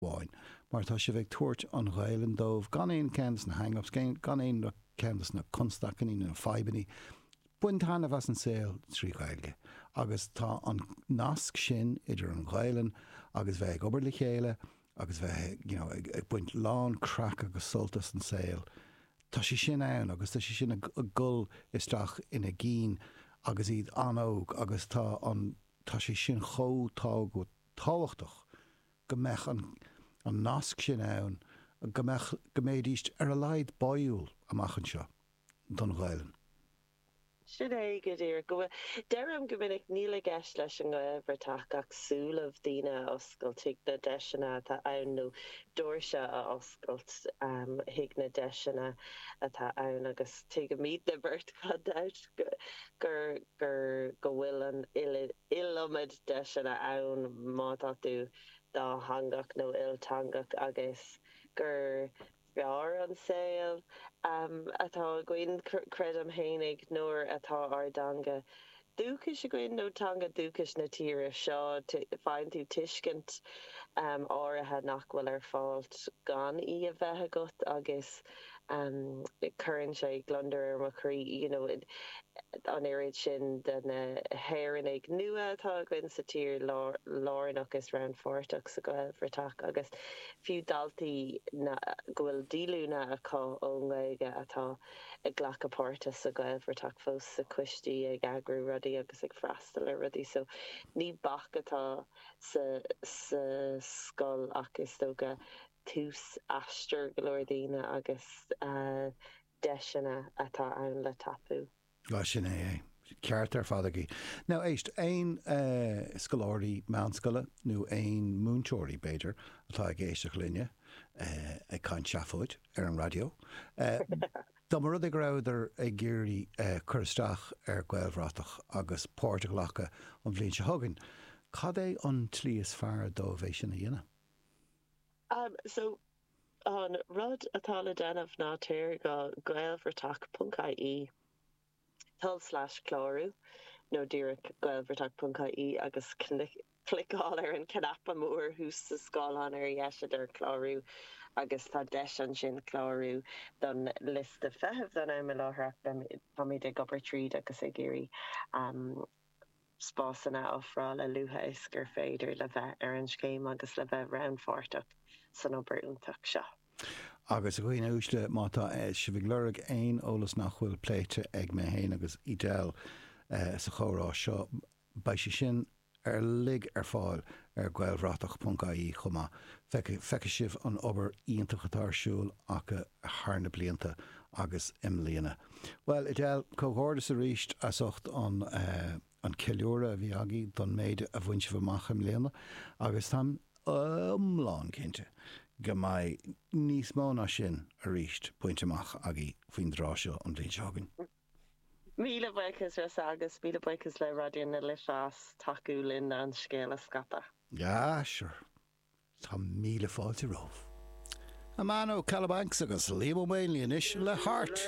amháin, mar tá sibh ag tabhairt an Ghaelainn dóibh gan aon cheann de na hang-ups, gan aon cheann de na constaicíní nó na fadhbannaí. Baint taitneamh as an saol trí Ghaeilge agus tá an nasc sin idir an Ghaelainn agus bheith ag obair le chéile agus bheith you know ag baint lán craic agus sult as an saol, tá sé sin ann agus tá sé sin ag dul isteach ina gcinn agus iad an-óg agus tá an, tá sé sin chomh tábhachtach. go mbeadh an an nasc sin ann go mbeadh go mbéidís ar a laghad báúil amach anseo don Ghaelainn. Sin é go díreach. Go bhfuil, deirim go minic, níl i gceist leis an nGaelbhratach ach súile daoine a oscailt chuig na deiseanna atá ann nó doirse a oscailt chuig na deiseanna atá ann agus tuigimid 'nár mbeirt gan dabht gur gur go bhfuil an iliomad deiseanna ann má tá tú dátheangach nó ilteangach agus gur fearr an saol atá againn, creidim fhéinig, nuair atá ár dteanga dúchais againn nó teanga dúchais na tíre seo. Faigheann tú tuiscint áirithe nach bhfuil ar fáilt gan í a bheith agat agus. cuireann sé gliondar ar mo chroí you know an oiread sin de na hÉireannaigh nua atá againn sa tír lárnach is rannpháirteach sa Ghaelbhratach agus fiú daltaí go bhfuil díolúine acu ón nGaeilge atá ag glacadh páirte sa Ghaelbhratach fós sna coistí ag eagrú rudaí agus ag freastal ar rudaí so ní bac atá sa scoil ach is dócha go tús aistir go leor daoine agus deiseanna atá ann le tapú. Bhuel, sin é é. Ceart ar fad agaibh. Now, éist, aon scoláirí meánscoile nó aon múinteoirí, b'fhéidir, atá ag éisteacht linne ag caint seafóid ar an raidió, dá mba rud é go rabhadar ag iarraidh cur isteach ar Gaelbhratach agus páirt a ghlacadh an bhliain seo chugainn, cad é an tslí is fearr dóibh é sin a dhéanamh? Am so, an rud atá le déanamh ná téir go gaelbhratach.ie, tul slash clárú, nó díreach gaelbhratach.ie agus cliceáil ar an cnaipe mór thuas sa scáileán ar dheis a deir clárú agus tá deis ansin clárú don liosta feithimh don am i láthair ach beimid ag obair tríd agus ag iarraidh spásanna a ofráil a luaithe is gur féidir le bheith ar an scéim agus le bheith rannpháirteach san obair iontach seo. Agus, a dhaoine uaisle, má tá sibh ag lorg aon eolas nach bhfuil pléite ag mé fhéin agus Edel sa chomhrá seo, beidh sé sin uilig ar fáil ar Gaelbhratach.ie chomh maith. Feicfidh sibh an obair iontach atá ar siúl acu thar na blianta, agus i mbliana. Bhuel, Edel, comhghairdeas arís as ucht an ceiliúradh a bhí agaibh don méid a bhain sibh amach i mbliana agus táim iomlán cinnte go mbeidh níos mó ná sin arís bainte amach agaibh faoin dtráth seo an bhliain seo chugainn. Míle buíochas Rossa agus míle buíochas le Raidió na Life as tacú linn an scéal a scaipeadh. Ah, sure. Tá míle fáilte romhaibh. Amano, Kalabanx agus Liam Ó Maonlaí anois le Heart!